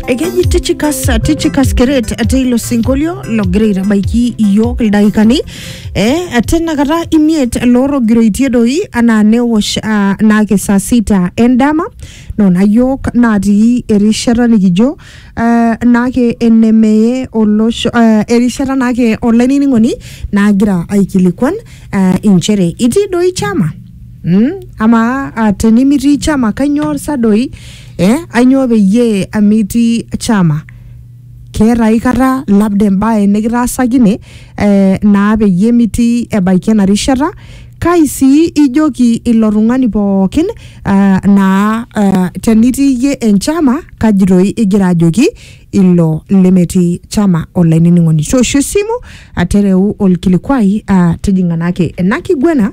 ekeji tichikas tichikas keret ate ilo sinkolio logira aitabaiki iyiook ildaikani eh, ate nakata imiet loorogiroitie doi anaa newosh ah, naake saa sita endama nona yiok natii erishata nikijo eh, naake enemeye olosho eh, erishata naake olainining'oni nagira aikilikuan eh, inchere itii doi chama Mm? Amaa ah, tenimitii chama kainyoo sa doi? Eh? Ainyoo peyie amitii chama? keeta aikata labda embae nikitaasakine eh, naa peyie mitii ebaiki ena rishata kai sii ijoki ilo tung'ani pookin eh, naa eh, tenitii iyie enchama kaji toi igira ajoki ilo lemetii chama olainining'oni toosho esimu atereu olkilikwai ah, tijing'a naake ena kiguena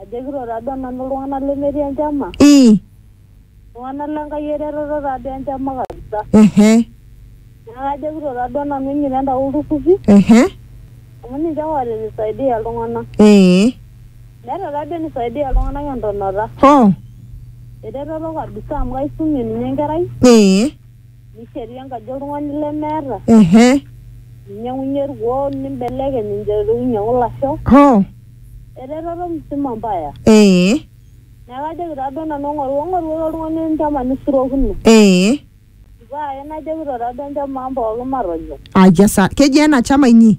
Ajokito taa duo nanu iltung'anak lemetii enchama, ii iltung'anak le Nkai eretoto taa duo enchama kabisa. ehe Neeku ajokito taa duo nanu injito entau ilturrurri ehe amu ninche ake oota enisaidia iltung'anak. ee Meeta taa duo enisaidia iltung'anak entonota. hoo Eretoto kabisa amu kaisumie ninye enkerai, ee Nishetu enkaji oltung'ani lemeeta, ehe ninyang'unye irkuoo nimbelekeny inchoto ainyang'u ilasho. hoo Eretoto musima mbaya. ee Neeku ajoki taa duo nanu eng'oru eng'orukoki oltung'ani enchama nisurokino. ee Pae najokito taa duo enchom ang' pookin matonyok. aja sa kejia ena chama inyi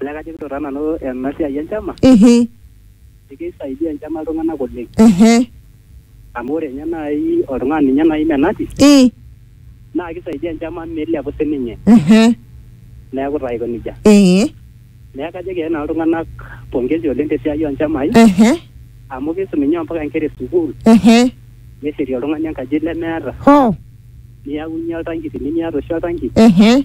Olee kajokito taa nanu ena siai enchama Ehe, keisaidia enchama iltung'anak oleng ehe, amu ore ninye naaji oltung'ani ninye naaji menati i, naa keisaidia enchama meilepu sininye ehe, neeku taa aiko nejia ee, neeku kajoki ake nanu iltung'anak pongezi oleng tesiai onchamai ehe, amu keisum ninye ompaka inkera esukuul ehe, neshetie oltung'ani enkaji lemeeta hoo, niyaunye oltanki tinimiata oshi oltanki ehe,